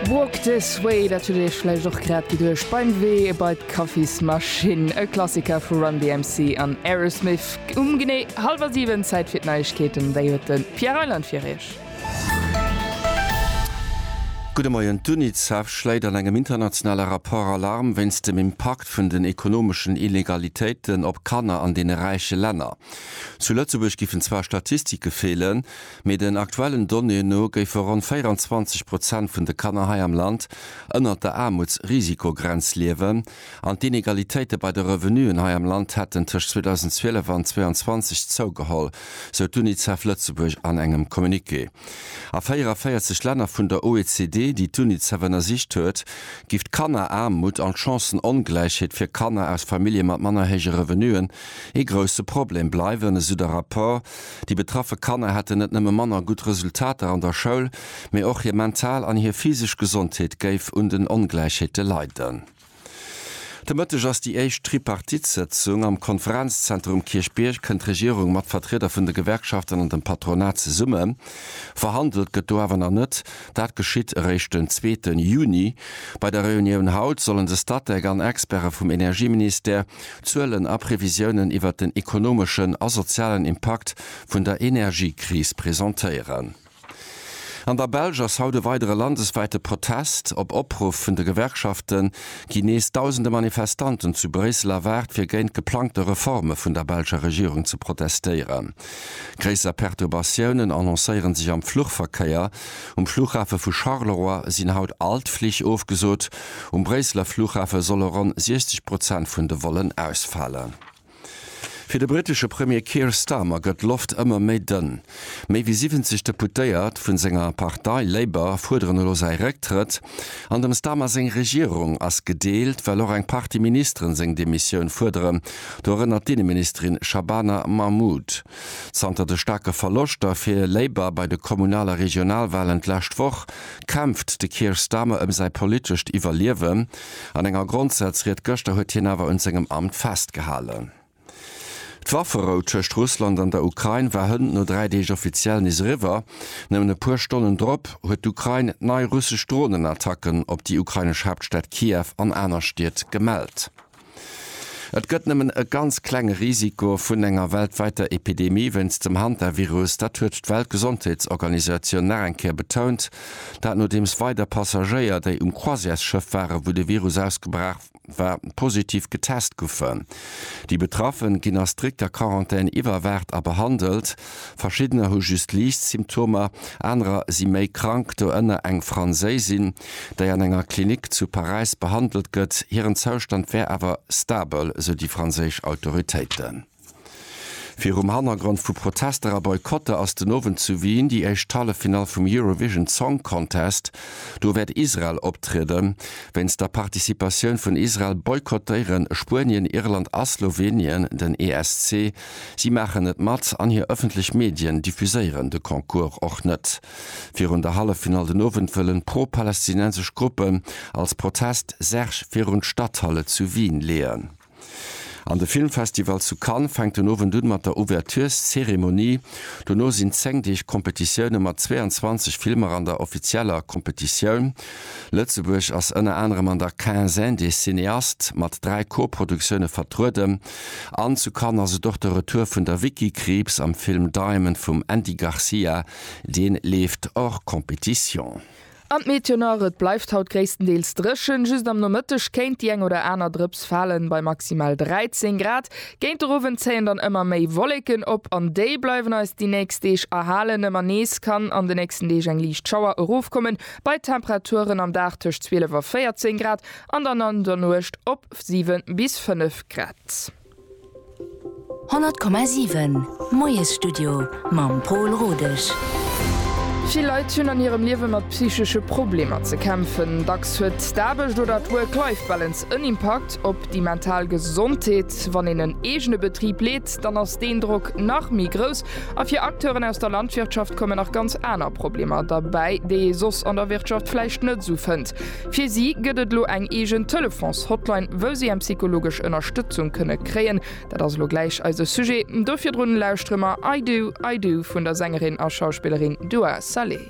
Walk This Way, dat hutt Dir Iech vläicht och grad geduecht beim Wee bei d'Kaffismaschinn. E Klassiker vu Run DMC an Aerosmith. Um genee hallwer 7, Zäit fir d'Neiegkeeten, déi huet de Pierre Reyland fir Iech. Gudde Moien, D'UNICEF schléit an engem internationale Rapport Alarm wéinst dem Impakt vun den ekonomeschen Inegalitéiten op Kanner an deene räiche Länner. Zu Lëtzebuerg giffen zwar Statistike feelen, Mee den aktuellen Donnéeën no géife ronn 24 Prozent vun de Kanner hei am Land ënnert der Aarmutsrisikogrenz liewen an d'Inegalitéite bei de Revenuen hei am Land hätten tëscht 2012 an 22 zougeholl, sou d'UNICEF Lëtzebuerg an engem Communiqué. A 44 Länner vun der OECD, déi d'UNICEF ënnersicht huet, giff d'Kanneraarmut an d'Chancënongläichheet fir Kanner aus Famillje mat manner héije Revenuen ee grousse Problem bleiwen, esou de Rapport. Déi betraffe Kanner hätten net nëmme manner gutt Resultater an der Schoul, mee och hir mental an hir physesch Gesondheet géif un den Ongläichheete leiden. De Mëtteg ass déi éischt Tripartite-Sëtzung. Am Konferenzzentrum Kierchbierg kënnt d'Regierung mat Vertrieder vun de Gewerkschaften an dem Patronat zesumme. Verhandelt gëtt do awer nach net. Dat geschitt eréischt den zweete Juni. Bei der Reunioun haut sollen de Statec an Experte vum Energieministère Zuelen a Previsiounen iwwert den ekonomeschen a sozialen Impakt vun der Energiekris presentéieren. An der Belsch ass haut e weidere landeswäite Protest. Op Opruff vun de Gewerkschafte ginn nees dausende Manifestanten zu Bréissel erwaart, fir géint geplangte Reforme vun der belscher Regierung ze protestéieren. Gréisser Perturbatiounen annoncéiere sech am Fluchverkéier. Um Flughafe vu Charleroi sinn haut all d'Flich ofgesot. Um Bréisseler Flughafe solle ronn 60 Prozent vun de Vollen ausfalen. Fir de brittesche Premier Keir Starmer gëtt d'Loft ëmmer méi dënn. Méi wéi 70 Deputéiert vu senger Partei Labour fuerderen elo säi Récktrëtt. An dem Starmer seng Regierung ass gedeelt, well och eng Partie Ministeren seng Demissioun fuerderen, do erënnert d'Inneministerin Shabana Mahmood. Zanter de staarke Verloschter fir Labour bei de Kommunal a Regionalwahlen d'lescht Woch, kämpft de Keir Starmer ëm säi politescht Iwwerliewen. An enger Grondsätzried gëschter huet hien awer un sengem Amt festgehalen. D'Wafferou tëscht Russland an der Ukrain war hënt no dräi Deeg offiziell nees eriwwer. Nëmmen e puer Stonnen drop huet d'Ukrain nei russesch Dronenattacken op déi ukrainesch Haaptstad Kiew an aner Stied gemellt. Et gëtt nëmmen e ganz klenge Risiko vun enger weltwäiter Epidemie wéinst dem Hantavirus, dat huet d'Weltgesondheetsorganisatioun nach eng Kéier betount. Dat nodeems weider Passagéier, déi um Croisièresschëff waren, wou de Virus ausgebraach, wa positiv getest guffen. Déi Betraffen ginn a strikter Quarantän iwwerwaacht a behandelt. Verschiddener hu just liicht Symptomer, anerer si méi krank, doënner eng Franséisin, déi an enger Klinik zu Paräis behandelt gëtt. Hiren Zoustand wär awer stabel, sou déi franséisch Autoritéiten. Virum Hannergrond vu Protester a Boycotter ass den Owend zu Wien déi éischt Halleffinall vum Eurovision Song Contest. Do wäert Israel optrieden. Wéinst der Participatioun vun Israel boykottéiere Spuenien, Irland a Slowenien den ESC. Si maachen net mat an hir ëffentlech Medien diffuséieren de Concours och net. Virun der Halleffinall den Owend wëllen pro-palästinensesch Gruppen als Protest Särg virun d'Stadthalle zu Wien leeën. An de Filmfestival zu Cannes fänkt den Owend un mat der Ouvertureszeremonie. Dono sinn 10 Deeg Competitioune mat 22 Filmer an der offizieller Competitioun. Lëtzebuerg ass ënner anerem an der Quinzaine des cinéastes mat 3 Co-Produktioune vertrueden. An zu Cannes ass et och de Retour vun der Vicky Krieps am Film Diamond vum Andy Garcia, deen leeft hors compétition. An d'Meteo nach, Et bleift haut gréisstendeels dréchen, just am Nomëtteg kéint déi eng oder aner Drëps falen, bei maximal 13 Grad. Géint de Owend zéien dann ëmmer méi Wolleken op, an déi bleiwen eis déi nächst Deeg erhalen. Ëmmer nees kann an de nächsten Deeg eng liicht Schauer erofkommen, bei Temperaturen am Dag tëscht 12 a 14 Grad an dann an der Nuecht op 7 bis 5 Grad. 100,7 Moiesstudio mam Pol Rodesch. Vill Leit hunn an hirem Liewe mat psychesche Problemer ze kämpfen. Dacks huet d'Aarbecht oder d'Work-Life-Balance en Impakt op déi mental Gesondheet. Wann een en eegene Betrib leet, dann ass deen Drock nach méi grouss. A fir Acteuren aus der Landwirtschaft kommen nach ganz aner Problemer derbäi, déi ee soss an der Wirtschaft vläicht net esou fënnt. Fir si gëtt et elo eng eegen Telefons-Hotline, wou si eng psychologesch Ënnerstëtzung kënne kréien. Dat ass elo gläich eise Sujet, do virdrun lauschtere mer I Do, I Do vun der Sängerin a Schauspillerin Dua Saleh.